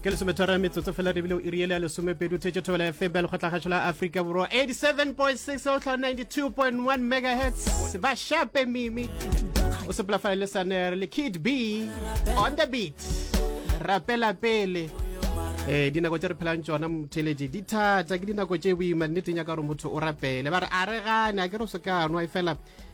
ke lesomethara metsotso fela rebile o iriele ya lesomepedi o thetse thobela ya febel go tlagašo la aforika borwa 87.6 o tlha 92.1 megahertz se ba shape mimi o sepela fa le saner le kid b on the beat rapela pele eh dinako tse re phelang tsona motheletše di thata ke dinako tse boima nneteng ya ka gore motho o rapele ba re a re gane a ke re o se ka nwa e fela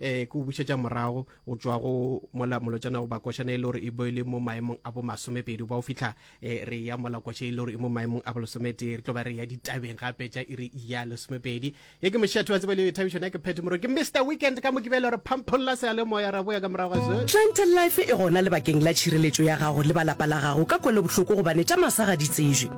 eh ke o bušetša morago o tšwa go mola molotšana goba košana e le gore e bo e le mo maemong a bo masomepedi ba o fitlha eh, re ya mola koša e le gore e mo maemong a bo lesometee re tlo ba re ya ditabeng gape tša e re ya lesomepedi ye ke mešatho wa tseba le thabišone ya ke phethe moro ke mr weekend ka mo ke bele gore phampholla se a le moya ra boya ka morago ga se Gentle Life e gona lebakeng la tšhireletšo ya gago le ba lapa la gago ka kwelobohloko gobane tša masa ga di tsejwe.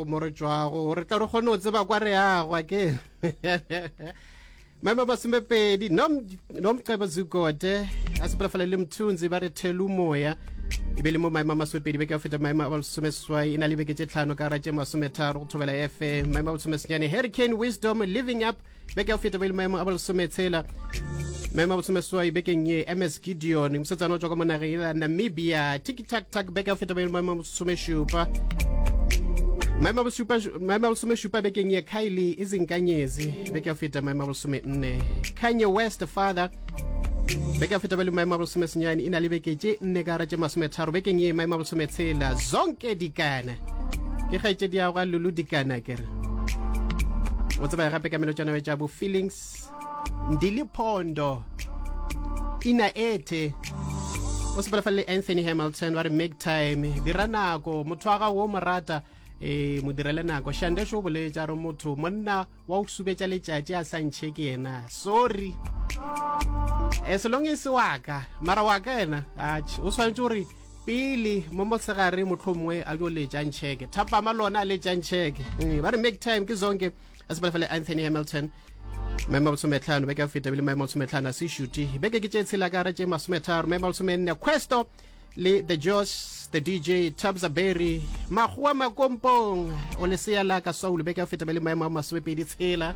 mo re tšwago gore tla re kgone go tseba kwa re yago ake maemo masomepedi nomcebo zugode a sepelafale le mthunzi ba re thelu moya e be le mo maemo a masomepedi beke a feta maemo a bolesomeswai e na le beke tše tlhano ka ratše masometharo go thobela fm maemo a bolesomesenyane hurricane wisdom living up beke ya go feta ba ile maemo a bolesometshela maemo a bolesomeswai bekeng ye ms gideon mosetsana o tswa ka mo nageng ya namibia tikitaktag beke ya go feta ba ile maemo a bolesomešupa maemo a bosupa- maemo a bolesomešupa bekeng ye kylie e zinkanyezi beke ya go feta maemo a bolesomenne kanye west father beke ya feta ba le maemo a bolesomesenyane e na le beke tše nne ka gara tše masometharo bekeng ye maemo a bolesometshela zonke dikana ke kgaetšediago ga lulu dikana kere o tsebaya gape ka melotšana tša bo feelings ndi le phondo ina ethe o sepela fa le anthony hamilton ba re make time dira nako motho wa gago o mo rata e mo direle nako shandesho o boletša re motho monna wa go subetša letšatši a sa ntšhe ke yena sorry e selong e se waka mara waka yena o tshwanetse gore pele mo mosegare mohlomongwe a jo letšang tšheke thapama lona a letšang tšheke ee, ba re make time ke zonke a sepela fela anthony hamilton maemo a bolsometlhano beke a feta bile maemo a bolsometlhano a se shuti beke ke tše tshela ka re tše masometharo maemo a bolsomenne questo le the jos the dj tabza berry makgowa makompong o leseya la ka saule beke a feta bile maemo a masomepedi tshela